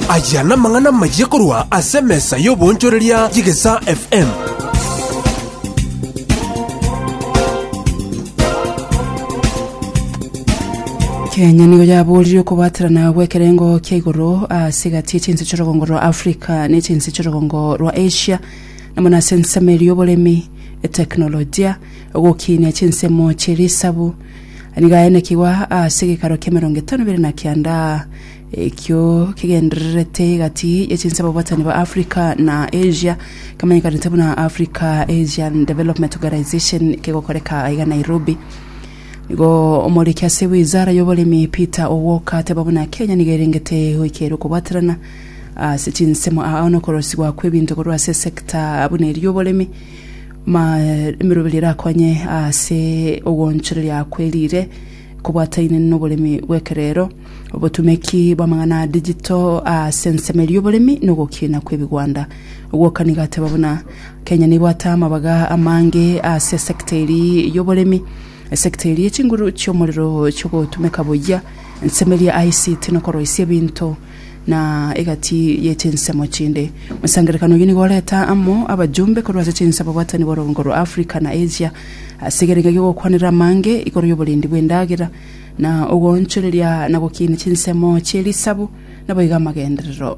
Aya namang'ana amayia korwa ase emesa y'oboonchoreria y'Egesaa FM. kenya nigo yaboorire okobaterana gw'ekerengo kia igoro ase egati y'echinse chi'orogongo rwa africa na echinse chi'orogongo rwa asia namo nase ensemo eria oboremi eteknolojia ogokinia chinsemo chi'erisabu Nigo aenekigwa ase gekaro ki'emerongo etano ibere na kianda, ekio kegendererete egati ye chinsemo bwatani bwa Africa na Asia, kemanyekanete buna Africa Asian Development Organization, kegokoreka aiga Nairobi. Nigo omoriki ase wizara y'oboremi Peter Owuoka ateba buna Kenya nigo erengete goikeria okobwaterana ase chinsemo aa nokorosigwa kw'ebinto korwa ase esector buna eria y'oboremi, Emeroberi erakonye ase ogoonchoreria kwerire kobwataine noboremi bw'ekerero, obotumeki bw'amang'ana a digital ase ensemeri y'oboremi na ogokiina kw'ebigwanda. Ogwokani gateba buna Kenya nebwate amabaga amange ase esecta eri y'oboremi, esecta eri ye chinguru chi'omorero chi'ogotumeka buya ensemeri ya ICT na okoroisia ebinto. na egati ye chinsemo chinde. Mosangerekano oyio nigo oreta amo abajumbe korwa ase chinse ababwatani b'orogongo rwa Africa na Asia ase egerenga gi'ogokwanera amange igoro y'oborendi bw'endagera na ogoonchoreria na gokiinia chinsemo chi'erisabu naboigo amagenderero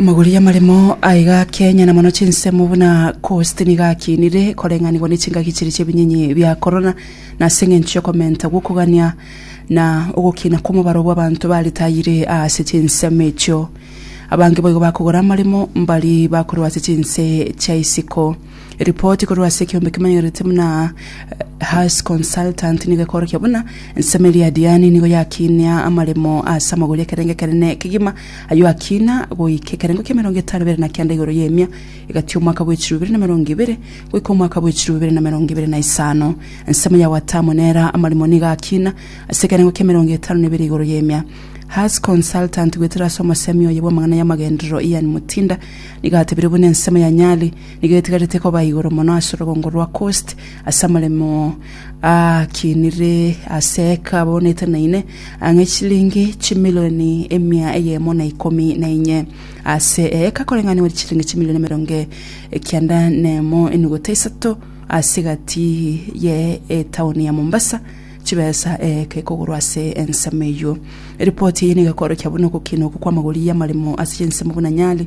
Amagori amaremo aiga Kenya na mono chinsemo buna Coast nigo akinire koreng'anigwa ne chingaki chire chi'ebinyinyi bia korona na ase engencho y'okomenta gw'okogania na ogokina kw'omobaro bw'abanto baritayire aase chinsemo echio. Abange boigo bakogora amaremo mbari bakorwa ase chinse chia isiko. Ripoti korwa ase ekeombe kemanyereretie buna Haas Consultant nigo ekorokia buna ensemo eria ya Diane nigo yakinia amaremo ase amagori ekerengo ekenene ekegima, ayio akina goika ekerengo kia emerongo etano bere na kenda igoro y'emia egati omwaka bwa echiru bibere na emerongo ebere goika omwaka bwa echiru bibere na emerongo ebere na isano. Ensemo ya Watamu nera amaremo nigo akina ase ekerengo kia emerongo etano na ebere igoro y'emia. Haas Consultant goetera ase omosemi oye bw'amang'ana y'amagenderero Ian Mutinda nigo atebire buna ensemo ya Nyali Nigo etigarete koba igoro mono ase orogongo rwa Kosti, ase amaremo aakinire ase eka aboonete na ine, ang'e chilingi chimilioni emia eyemo na ikomi na enye. Ase eeka koreng'anigwa chilingi chimilioni emerongo ekianda na emo enuguta isato ase egati ye etaoni ya Mombasa, chibesa eeka ekogorwa ase ensemo eyio. Ripoti eye nigo ekorokia buna ogokina okwo kw'amagori y'amaremo ase chinsemo buna Nyali,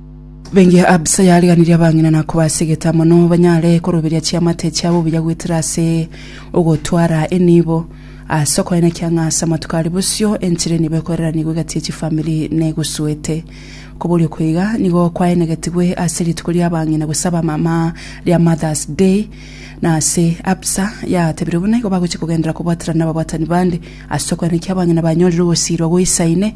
Bengiya Abisa yariganirie abang'ina na kobasegeta mono banyare koroberia chiamate chiabo buya goetera ase ogotwara enibo. Ase okoenekia ng'a ase amatuko aria bosio enchera enibo ekoreraniigwe egati ye chifamiri negosuete. Koboria okwo iga nigo kwaenegetigwe ase rituko ri'abang'ina gose abamama ria Mother's Day, na ase Abisa yatebire buna igo bagochia kogenderera kobwaterana nababwatani bande ase okoenekia abang'ina banyorire ogosiirwa goisaine,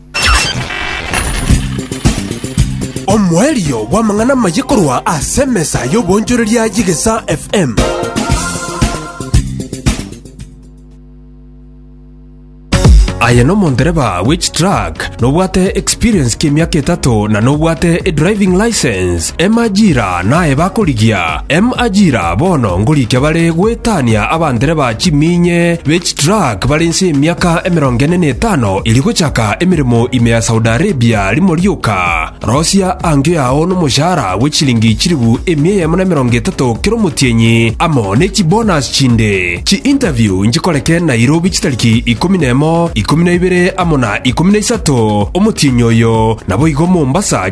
Omoerio bw'amang'ana amaye korwa ase emesa y'oboonchoreria y'Egesaa FM. Aye nomondereba w'echitruck, nobwate experience ki'emiaka etato na nobwate edriving license. Emajira naye bakorigia, emajira bono ngorikia bare goetania abandereba chiminye be chitruck bare inse y'emiaka emerongo ene na etano eria gochaka emeremo ime ya Saudi Arabia rimo rioka. Rosia angio yao nomoshahara bwe chiringi chilifu emia eyemo na emerongo etato kera omotienyi amo ne chibonus chinde. Chi-interview nchikoreke Nairobi chitariki ikomi na emo, ikomi na ibere amo na ikomi na isato omotienyi oyo, naboigo Mombasa